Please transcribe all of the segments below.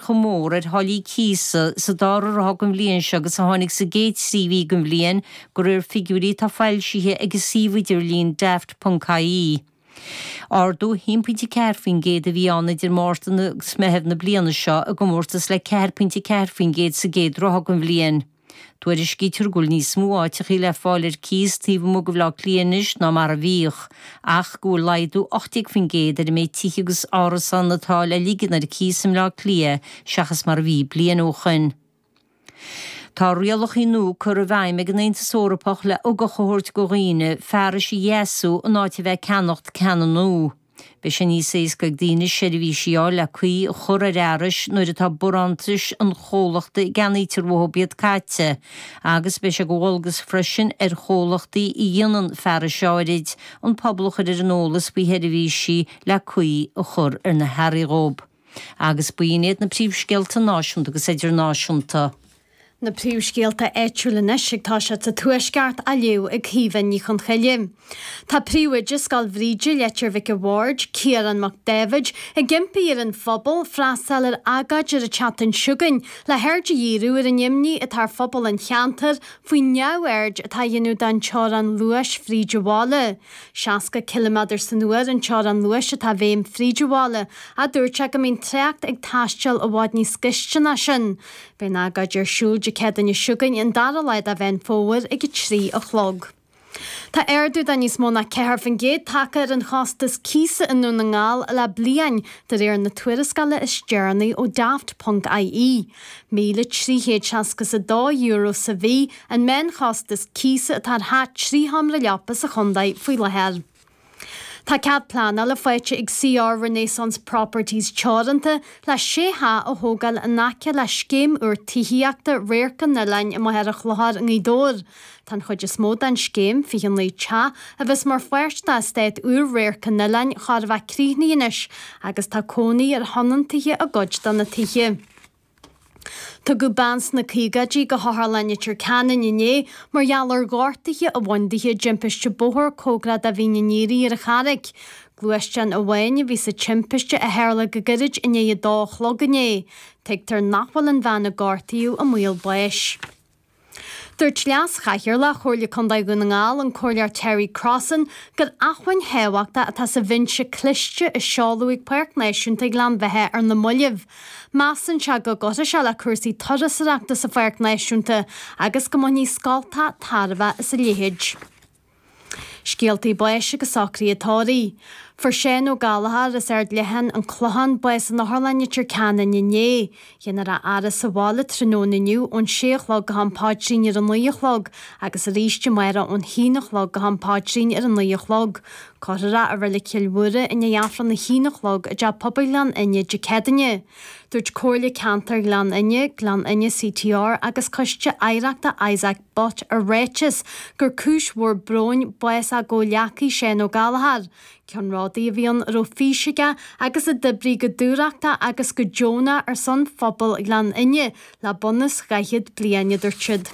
chomh mór ar tháillí cíosa sa dara ráithe den bhliain seo agus a tháinig sa gcéad trí mhí den bhliain, de réir figiúirí atá foilsithe ag an suíomh idirlín Daft.ie. Ardú 1.4% a bhí ann idir Márta agus Meitheamh na bliana seo, i gcomórtas le 4.4% sa gcéad ráithe den bhliain. Tuairiscítear go bhfuil níos mó áiteachaí le fáil ar cíos taobh amuigh de Bhaile Átha Cliath anois ná mar a bhíodh, ach go bhfuil laghdú 18% ar an méid tithe agus árasán atá le ligean ar cíos i mBleá Cliath seachas mar a bhí bliain ó shoin. Tá rialachaí nua curtha i bhfeidhm ag an Aontas Eorpach le ugach a thabhairt go dhaoine, fearais a dheasú in áit a bheith ag ceannacht ceanna nua. Beidh sé níos éasca ag daoine seirbhísí a fháil le caoi a chur ar fhearais nuair atá barántais an chomhlachta a gceannaítear uathu iad caite agus beidh sé de dhualgas freisin ar chomhlachtaí a dhéanann fearais áirid an pobal a chur ar an eolas faoi sheirbhísí le caoi a chur ar na hearraí dhób. Agus b'in iad na príomhscéalta náisiúnta agus idirnáisiúnta. Na príomhscéalta áitiúla anois ag tosú sa Tuaisceart á léamh ag Caoimhe Ní Chonchoille. Tá príomhoide Scoil Bhríde, Leitir Mhic an Bhaird, Ciarán Mac Dáibhid, ag impí ar an phobal freastáil ar agóid ar an tseachtain seo chugainn le haird a dhíriú ar an imní atá ar phobal an cheantair faoin neamhaird atá á dhéanamh den teorainn luais fríd an bhaile. Seasca ciliméadar san uair an teorainn luais atá i bhfeidhm fríd an bhaile, ach dúirt sé go mbíonn trácht ag taisteal i bhfad níos gaiste ná sin. Beidh an agóid ar siúl Dé Céadaoin seo chugainn an dara lá de Mheán Fómhair ag a trí a chlog. Tá ardú de níos mó ná ceathair faoin gcéad tagtha ar an chostas cíosa i nDún na nGall le bliain, de réir na tuarascála is deireanaí ó Daft. ie. 1,300 seasca is a dó euro sa mhí, an meánchostas cíosa atá ar theach trí sheomra leapa sa chontae faoi láthair. Tá cead pleanála faighte ag CR Renaissance Properties Teoranta le sé theach a thógáil in aice le scéim úr tithíochta Radharc an Oileáin i Machaire Chlochair i nGaoth Dobhair. Tá an chuid is mó den scéim, 29 teach, a bheas mar pháirt d'eastát úr Radharc an Oileáin chóir a bheith críochnaithe anois agus tá cónaí ar thionóntaithe i gcuid de na tithe. Tugadh bean sna caogaidí go hOtharlann Leitir Ceanainn inné mar gheall ar ghortaithe a bhain di i dtimpiste bóthair comhgarach do Mhín an Aoire ar an Charraic. Gluaisteán amháin a bhí sa timpiste a tharla go gairid i ndiaidh a dó a chlog inné. Tuigtear nach bhfuil an bhean a gortaíodh i mbaol báis. Dúirt Leas-Chathaoirleach Chomhairle Contae Dhún na nGall, an Comhairleoir Terry Crossan, gur acmhainn thábhachtach atá sa bhinse cliste a seoladh ag Páirc Náisiúnta Ghleann Bheithe ar na mallaibh. Measann sé go gcuirfidh sé le cúrsaí turasóireachta sa Pháirc Náisiúnta agus go mbainfidh scoltacha tairbhe as a leithéid. Scéaltaí báis agus socruithe tórraimh. Fuair Seán Ó Gallchóir as Ard Leathan, An Clochán, bás in Otharlann Leitir Ceanainn inné. Dhéanfar a fhaire sa bhaile tráthnóna inniu ón sé a chlog go ham paidrín ar a naoi a chlog agus arís amárach ón haon a chlog go ham paidrín ar a naoi a chlog. Cuirfear é i Reilig Chill Mhuire i ndiaidh Aifreann a haon a chlog i dTeach Pobail Ghleann Fhinne Dé Céadaoine. Dúirt Comhairle Ceantair Ghleann Fhinne, Gleann Fhinne CTR agus Coiste Oidhreachta Isaac Butt i ráiteas gur cúis mhór bróin bás a gcomhghleacaí Seán Ó Gallchóir. Ceannródaí a bhí ann a raibh fís aige agus a d'oibrigh go dúthrachtach agus go deonach ar son phobal Ghleann Fhinne le bunús dhaichead bliain, a dúirt siad.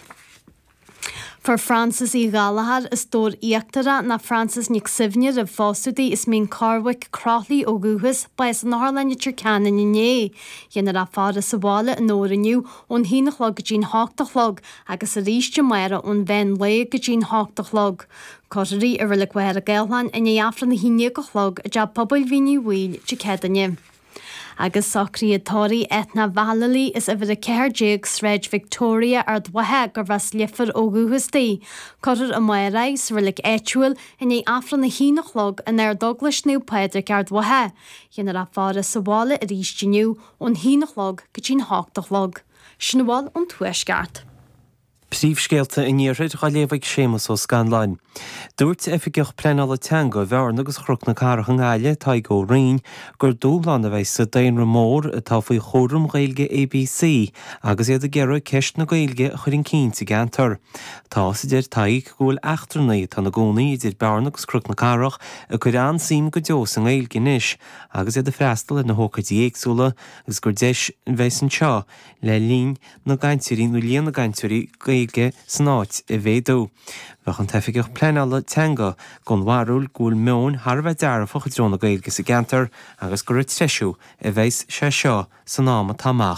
Fuair Frances Uí Ghallchóir as Dobhar Íochtarach nó Frances Nic Suibhne roimh phósadh di as Mín Corrbhaic Croithlí ó dhúchas, bás in Otharlann Leitir Ceanainn inné. Dhéanfar a faire sa bhaile i nDobhar inniu ón haon a chlog go dtí an hocht a chlog, agus arís amárach ón mheán lae go dtí an hocht a chlog. Cuirfear í i Reilig Mhachaire Gathlán i ndiaidh Aifreann a haon déag a chlog i dTeach Pobail Mhín Uí Bhaoill Dé Céadaoine. Agus socruithe tórraimh Eithne Vallely as uimhir 14 Sráid Victoria, Ard Mhacha, gurbh as Leifear ó dhúchas di. Cuirfear í amárach sa reilig áitiúil i ndiaidh Aifreann a haon a chlog in Ardeaglais Naomh Pádraig, Ard Mhacha. Dhéanfar a faire sa bhaile arís inniu ón haon a chlog go dtí an hocht a chlog. Sin a bhfuil ón Tuaisceart. Príomhscéalta an Iarthair dá léamh ag Séamus Ó Scanláin. Dúirt Oifigeach Pleanála Teanga Bhearna agus Chnoc na Cathrach i nGaillimh, Tadhg Ó Roinn, gur dúshlán a bheidh sa daonra mór atá faoi chúram Ghaeilge ABC agus iad ag iarraidh ceist na Gaeilge a chur chun cinn sa gceantar. Tá's, a deir Tadhg, go bhfuil eachtrannaigh atá ina gcónaí idir Bearna agus Cnoc na Cathrach ag cur an-suim go deo sa nGaeilge anois agus iad ag freastal ar na hócáidí éagsúla agus gur deis a bheas anseo le líon na gcainteoirí nó líon na gcainteoirí Gaeilge san áit a mhéadú. Bheadh an tOifigeach Pleanála Teanga den bharúil go bhfuil meon thar a bheith dearfach i dtreo na Gaeilge sa gceantar agus gur ag treisiú a bheas sé seo san am atá amach.